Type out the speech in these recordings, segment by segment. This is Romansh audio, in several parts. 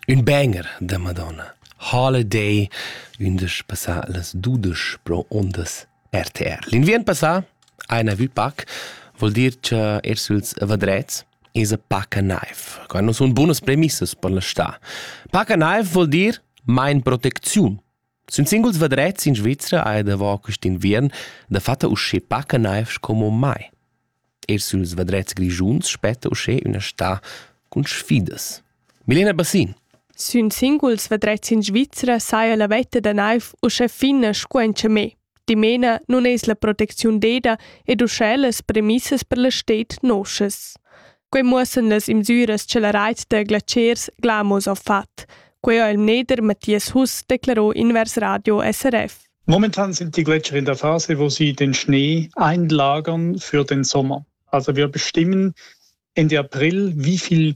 Ün bainer da Madonna Holiday ündesch passà las dudesch pro ondas RTR. L'inviern passà ha ina vü pac, vuol dir cha er süls vadrets esa paca naiv. Qua non sun bunas premissas per la stà. Paca naiv vuol dir main protecziun Sün singuls vadrets in Svizra haja davo quist inviern dafatta uschè paca naiv sco mai. Eir süls vadrets grischuns spetta uschè üna stà cun sfidas. Milena Bassin Sün singuls vadrets in Svizra saja la vetta da naiv uschè fina sco in chamè. Dimena nun es la protecziun deda ed uschè las premissas per la sted noschas. Quai muossan las imsüras cha la rait da glatschers Glamos ha fat. Quai ha il mneder Matthias Huss declarò invers Radio SRF. Momentan sind die Gletscher in der Phase, wo sie den Schnee einlagern für den Sommer. Also wir bestimmen Ende April, wie viel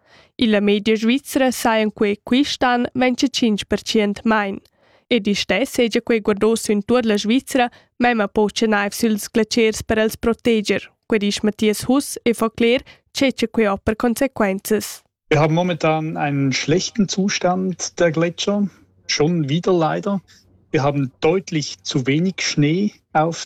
Illa media svizra sajan quei quist'an vain che tschinch percent main. Ed istess seja quei guardò sün tuot la Svizra, memma po che naiv süls glaciers per els proteger, que disch Matthias Huss e fa cler che che quei ho per consequenzas. Wir haben momentan einen schlechten Zustand der Gletscher, schon wieder leider. Wir haben deutlich zu wenig Schnee auf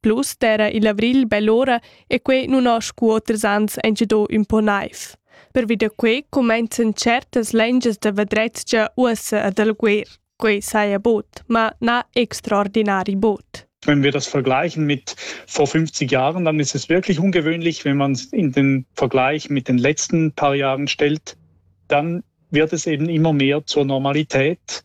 Plus d'era il avrigl bell'ora e quei nun ho scu oters ans engido ün po naiv. Pervi da quei comenzan certas lengias da vadrezia uossa ad alguer. Quei saja bod, ma na extraordinari bod. Wenn wir das vergleichen mit vor 50 Jahren, dann ist es wirklich ungewöhnlich, wenn man es in den Vergleich mit den letzten paar Jahren stellt, dann wird es eben immer mehr zur Normalität.